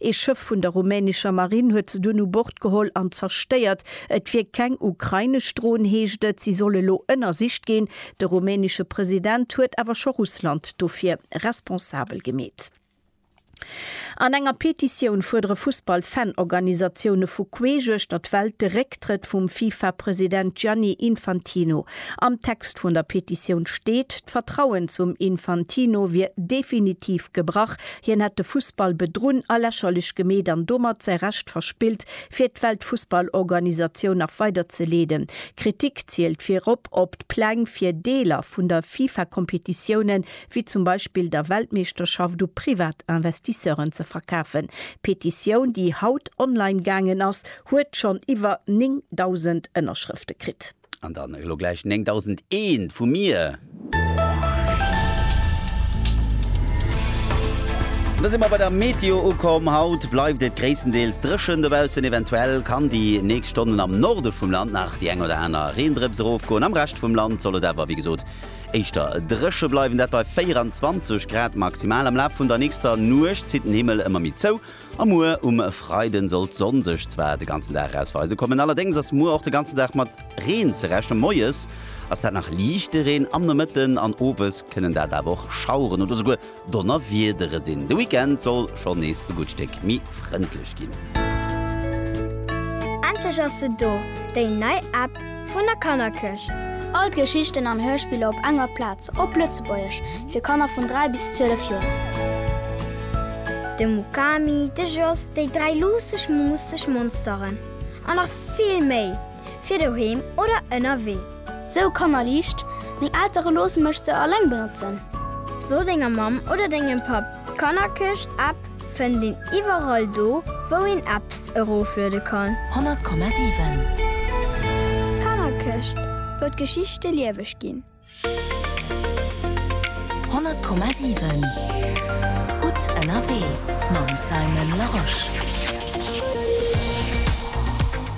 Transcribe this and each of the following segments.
Ee Schëff vun der rumänescher Marinn huet se dunn u Bord geholl an zerstéiert. Et wier keng ukrainesch Dron, heescht et. Si soll elo ënnersicht ginn. De rumänesche President huet awer scho Russland dofir responsabel gemeet. An enger Petitioun fuerdere Fussball-Fan-Organisatioune vu queesch uechter d'Welt de Récktrëtt vum FIFA-President Gianni Infantino. Am Text vun der Petitioun steet, d'Vertrauen zum Infantino wier definitiv gebrach, Hien hätt de Fussball bedrunn a lächerlech gemeet an domat säi Recht verspillt, fir d'Weltfussballorganisatioun nach weider ze leeden. Kritik zielt virop op d'Pläng, fir Deeler vun der FIFA-Kompetitioune wéi zum Beispill der Weltmeeschterschaft u privat Investisseuren ze verkafen. D'Petitioun, déi haut online gaangen ass, huet schonn iwwer 9.000 Ënnerschrëfte kritt. An dann elo gläich 9001 vu mir. Da si mer bei der Meteo ukomm. Haut bleift et gréisstendeels dréchen dobaussen. Eventuell kann déi nächst Stonnen am Norde vum Land nach déi eng oder aner Reendrëps erofgoen. Am Rescht vum Land soll et awer, wéi gesot, éischter dréche bleiwen, dat bei 24 Grad maximal. Am Laf vun der nächster Nuecht zitt den Himmel ëmmer méi zou. A muer um Freiden soll d'Sonn sech zwar de ganzen Dag eraus weise kommen, allerdéngs ass muer och de ganzen Dag mat Reen ze rechnen. Moies ass dat nach liichte Reen, am Nomëtten an Owes kënnen dat awer och Schaueren oder souguer Donnerwiedere sinn. De Weekend soll schonn nees e gutt Stéck méi frëndlech ginn. Endlech ass se do, déi nei App vun der Kannerkierch! All d'Geschichten an Hörspiller op enger Plaz. Op Lëtzebuergesch fir Kanner vun 3 bis 12 Joer. De Mukami, de Jos, déi dräi luusseg muusseg Monsteren an nach vill méi fir doheem oder ënnerwee. Sou Kanner liicht, Meng Eltere loosse mech se alleng benotzen. So denger Mamm oder dengem Papp, d'Kannerkëscht App fënnt een iwwerall do wou een Apps erofluede kann. 100,7. D'Kannerkëscht wou d'Geschichte lieweg ginn. 100,7 Gutt ënnerwee mam Simon Larosche.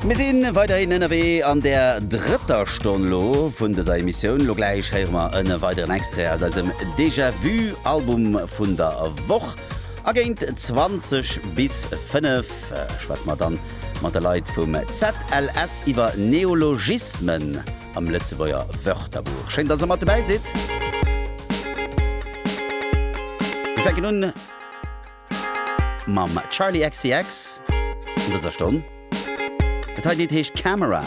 Mir si weiderhin ënnerwee an der drëtter Stonn elo vun dëser Emissioun. Elo gläich héiere mer e weideren Extrait aus eisem Déjà Vu Album vun der Woch. A géint 20 bis 5 schwätze mer dann mat de Leit vum ZLS iwwer Neologismen. am Lëtzebuerger Wörterbuch. Schéin, dass der mat dobäi sidd. Mir fänken un mam Charli XCX an dëser Stonn. Dat hei Lidd heescht Camera.